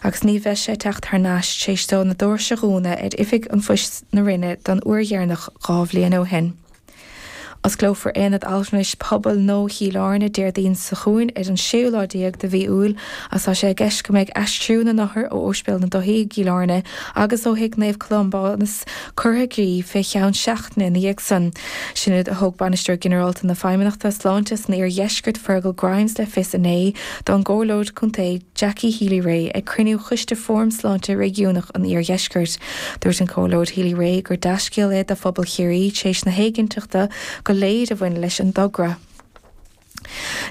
Agus ní bheidh sé ag teacht thar n-ais téis dó na dóirse a dhúnadh ar Oifig an Phoist na Rinne don uair dheireanach dhá bhliain ó shin. Osclófar Aonad Altranais Pobail Nua Chill Airne Déardaoin seo chugainn ar an séú lá déag de mhí Iúil agus tá sé i gceist go mbeidh aistriú na n-othar ó Ospidéal na Dúthaí i gCill Airne agus ó Thigh Naomh Columbanus curtha i gcrích fé cheann seachtaine ina dhiaidh san. Sin rud a thug Bainisteoir Ginearálta na Feidhmeannachta Sláinte san Iardheisceart Fergal Grimes le fios inné don gComhairleoir Contae, Jackie Healy-Rae ag cruinniú Choiste Fóram Sláinte Réigiúnach an Iardheiscirt. Dúirt an Comhairleoir Healy-Rae gur dea-scéal é do phobal Chiarraí tar éis na héiginnteachta go léir a bhain leis an dtogra.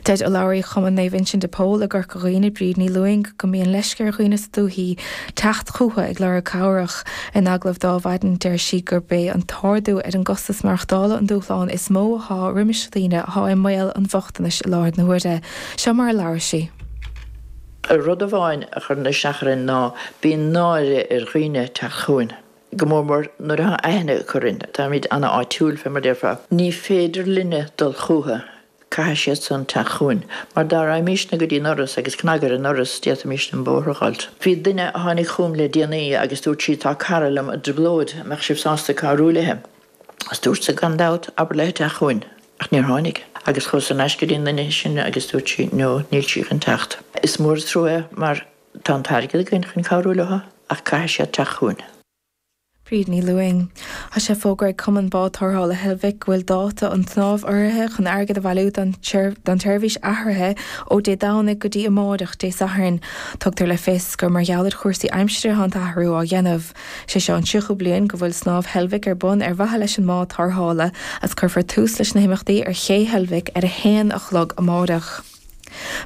Deir urlabhraí Chumann Naomh Uinseann de Pól i gCorca Dhuibhne, Bríd Ní Lúing, go mbíonn leisce ar dhaoine sa dúthaí teacht chucu ag lorg cabhrach. In agallamh ar maidin deir sí gurb é an t-ardú ar an gcostas maireachtála an dúshlán is mó atá roimis dhaoine atá i mbaol an bhochtanais i láthair na huaire. Seo mar a labhair sí. Rud amháin a chuireann isteach orainn ná bíonn náire ar dhaoine teacht chugainn, go mór mór nuair atá aithne acu orainn, táimid an-áitiúil, fé mar a déarfá. Ní féidir linne dul chucu, caithfidh siad san teacht chugainn, mar dá raghaimísne go dtí an ndoras agus cnag ar an ndoras, d'fhéadfaimísne an bóthar a fháilt. Bhí duine a tháinig chugam le déanaí agus dúirt sí, tá cara liom i dtrioblóid, an mbeadh sibh sásta cabhrú léi? Is dúrtsa, gan dabht, abair léi teacht chugainn, ach níor tháinig. Agus chuas ar n-ais go dtí an duine sin agus dúirt sí, no, níl sí chun teacht. Is mór an trua é mar tá an t-airgead againn chun cabhrú leo ach caithfidh siad teacht chugainn. Bríd Ní Lúing. Tá sé fógartha ag Cumann Bád Tarrthála Heilbhic go bhfuil dáta an tsnámh urraithe chun airgead a bhailiú don tseirbhís athraithe ó Dé Domhnaigh go dtí amáireach, Dé Sathairn. Tugtar le fios gur mar gheall ar chúrsaí aimsire atá an t-athrú á dhéanamh. Sé seo an tríochú bliain go bhfuil Snámh Heilbhic ar bun ar mhaithe leis an mbád tarrthála agus cuirfear tús leis na himeachtaí ar Ché Heilbhic ar a haon a chlog amáireach.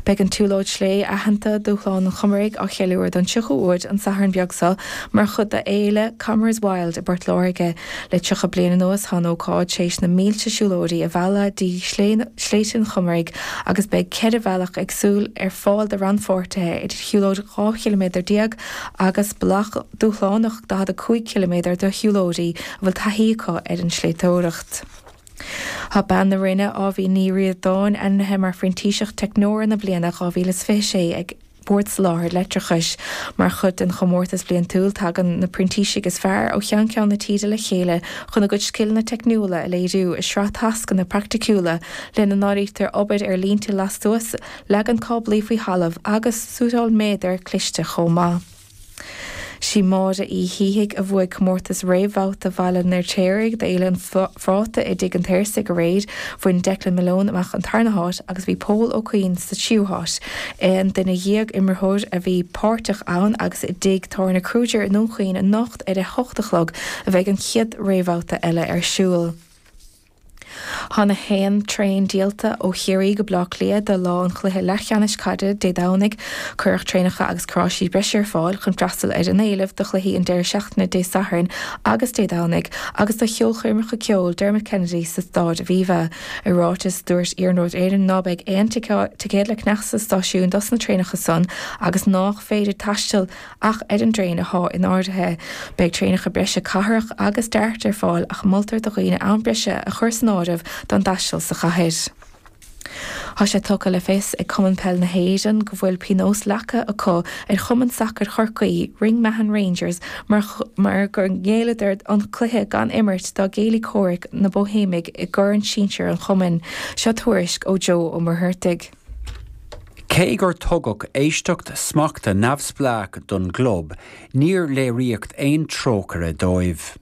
Beidh an tsiúlóid sléibhe aitheanta Dúshlán an Chomaraigh á cheiliúradh don tríochú uair an Satharn beag seo mar chuid de Fhéile Comeraghs Wild i bPort Láirge. Le tríocha bliain anuas tá an ócáid tréis na mílte siúlóirí a mhealladh dtí Sléibhte an Chomaraigh agus beidh ceithre bhealach éagsúil ar fáil do rannpháirtithe idir shiúlóid 12 chiliméadar, agus bealach dúshlánach 45 ciliméadar do shiúlóirí a bhfuil taithí acu ar an tsléibhteoireacht. Tá bean na Rinne, Aoibhinn Ní Ríordáin, ainmnithe mar Phrintíseach Teicneora na Bliana 2026 ag Bord Soláthair Leictreachais. Mar chuid den chomórtas bliantúil, tagann na printísigh is fearr ó cheann ceann na tíre le chéile chun a gcuid scileanna teicniúla a léiriú i sraith tascanna praiticiúla, lena n-áirítear obair ar línte lastuas Leagan cáblaí faoi thalamh agus suiteáil méadair cliste chomh maith. Sí Máire Uí Shíthigh a bhuaigh comórtas réamhbhabhta Bhaile an Fheirtéaraigh d'Fhéile an Phráta i dTigh an tSaorsaigh aréir. Bhain Declan Malone amach an tarna háit agus bhí Pól Ó Cuinn sa tríú háit. Aon duine dhéag imreoir a bhí páirteach ann agus i dTigh Tábhairne Kruger i nDún Chaoin anocht ar a hocht a chlog a bheidh an chéad réamhbhabhta eile ar siúl. Thá nach aon traein díolta ó Chiarraí go Baile Átha Cliath do lá an chluiche leathcheannais caide Dé Domhnaigh. Cuireadh traenacha agus carráistí breise ar fáil chun freastal ar an éileamh do chluichí an deireadh seachtaine Dé Sathairn agus Dé Domhnaigh agus do cheolchoirmeacha ceoil Dermot Kennedy sa Staid Aviva. I ráiteas, dúirt Iarnród Éireann ná beidh aon ticéad le ceannach sa stáisiún dos na traenacha san agus nách féidir taisteal Ach ar an dtraein athá in áirithe, beidh traenacha breise cathrach agus DART ar fáil ach moltar do dhaoine am breise a chur san áireamh don dtaisteal sa chathair. Tá sé tugtha le fios ag Cumann Peile na hÉireann go bhfuil pionós leagtha acu ar chumann sacair Chorcaí, Ring Mahon Rangers, mar gur ghéilleadar an cluiche gan imirt dá gcéilí comhraic, na Bóithéimigh, i gCorn Sinsir an chumainn. Seo tuairisc ó Joe Ó Muircheartaigh. Cé gur tugadh éisteacht smachta neamhspleách don gclub, níor léiríodh aon trócaire dóibh.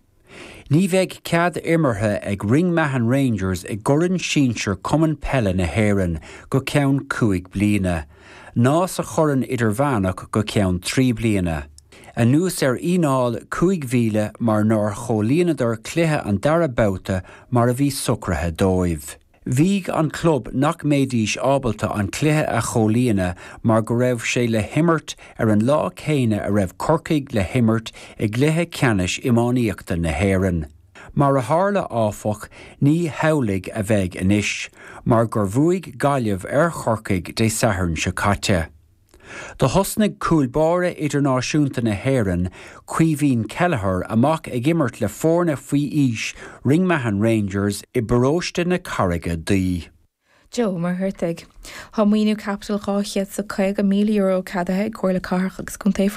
Ní bheidh cead imeartha ag Ring Mahon Rangers i gCorn Sinsear Cumann Peile na hÉireann go ceann cúig bliana, ná sa Chorn Idirmheánach go ceann trí bliana, anuas ar fhíneáil cúig mhíle mar nár chomhlíonadar cluiche an dara babhta mar a bhí socraithe dóibh. Mhaígh an club nach mbeidís ábalta an cluiche a chomhlíonadh mar go raibh sé le himirt ar an lá céanna a raibh Corcaigh le himirt i gcluiche ceannais iománaíochta na hÉireann. Mar a tharla, áfach, ní hamhlaidh a bheidh anois, mar gur bhuaigh Gaillimh ar Chorcaigh Dé Sathairn seo caite. Do thosnaigh cúl báire idirnáisiúnta na hÉireann, Caoimhín Kelleher, amach ag imirt le foirne faoi aois Ring Mahon Rangers i bparóiste na Carraige Duibhe. Joe Ó Muircheartaigh. Tá maoiniú caipitil €250,000 ceadaithe ag Comhairle Cathrach agus Contae.